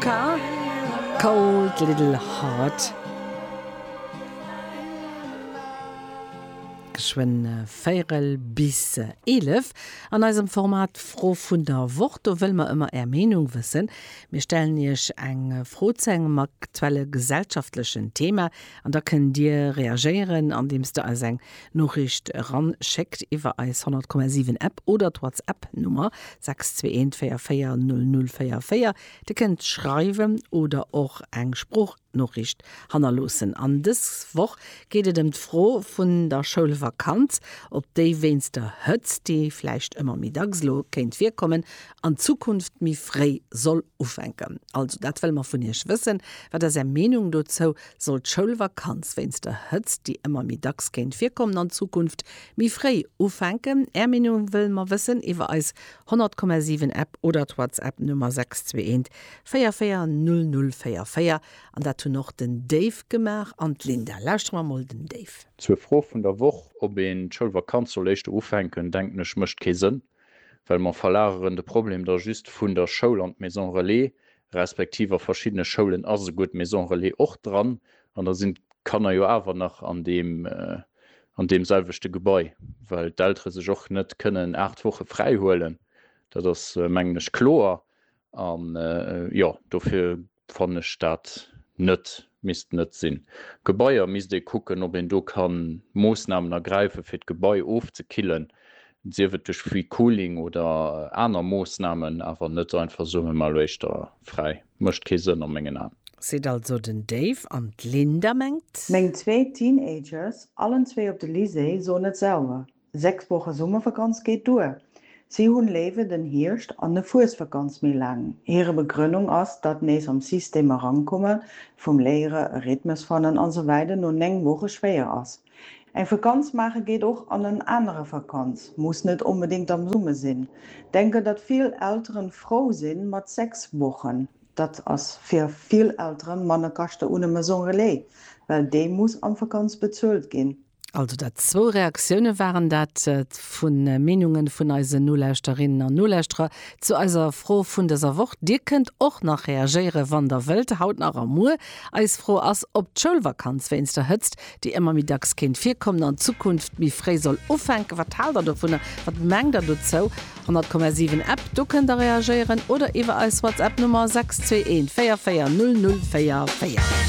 K, Cold Little Heart. Geschwënn véierel bis eelef. An eisem Format Fro vun der Woch, do wëlle mer ëmmer Är Meenung wëssen. Mir stellen Iech eng Fro zu engem aktuelle gesellschaftlechen Thema an da kënnt Dir reagéieren, andeems Der eis eng Noriicht eranschéckt iwwer eis 100,7 App oder d'Whatsapp Nummer 6214400044. Dir kënnt schreiwen oder och eng Sproochnoriicht hannerloossen. An dës Woch geet et ëm d'Fro vun der Schoulvakanz, op déi wéinst der Hëtzt, déi vläicht ëmmer méi dacks elo kéint virkommen, an Zukunft méi fréi soll ufänken. Also dat wëlle mer vun Iech wëssen. Wat ass Är Meenung dozou? Soll d'Schoulvakanz wéinst der Hëtzt, déi ëmmer méi dacks kéint virkommen, an Zukunft méi fréi ufänken? Är Meenung wëlle mer wëssen iwwer eis 100,7 App oder d'Whatsapp Nummer 621440044 an dat hunn och den Dave gemaach an d'Linda. Lauschtere mer mol den Dave. Zur Fro vun der Woch, ob een d'Schoulvakanz soll éischter ufänken, denken ech mécht kee Sënn, well mer verlageren de Problem da just vun der Schoul an d'Maison Relais, respektiv a verschiddene Schoulen ass esouguer d'Maison Relais och dran, an da sinn d'Kanner jo awer nach an deem an deem selwechte Gebai, well d'Eltere sech och net kënnen aacht Woche fräi huelen, dat ass mengen ech kloer. An jo, dofir fannen ech dat net Misst net sinn. Gebaier misst ee kucken, ob een do kann Moossnamen ergräifen, fir d'Gebai ofzekillen, sief et duerch Free Cooling oder aner Moossnamen, awer net einfach soen, mir maache Loischter fräi. Mécht kee Sënn a mengen Aen. Seet also den Dave. An d'Linda mengt. Meng zwee Teenagers, allen zwee op de Lycée, soen et sauer. Sechs Woche Summervakanz geet duer. Si hunn léiwer den Hierscht an e Fuesvakanz méi laang. Hire Begrënnung ass, datt nees am System erankomme vum Léiere, e Rhythmus fannen an esou weider no 9 Woche schwéier ass. Eng Vakanz maache geet och an en anere Vakanz, muss net onbedéngt am Summe sinn. Denken, datt vill Elteren frou si mat 6 Wochen. Datt ass fir vill Elteren manner Kaschte un e Maison Relais, well déi muss am Vakanz bezuelt ginn. Also dat zwou Reaktioune waren dat vu Meenunge vun eisen Nolauschterinnen an Nolauschterer zu eiser Fro vun dëser Woch. Dir kënnt och nach reagéiere wann der wëllt, haut nach a muer. Eis Fro ass, ob d'Schoulvakanz wéinst der Hëtzt, déi ëmmer méi dacks kéint virkommen, an Zukunft méi fréi soll ufänken. Wat haalt der dovunner? Wat mengt der dozou? 100,7 App, do kënnt der reagéieren oder iwwer eis WhatsApp Nummer 621 44 00 44.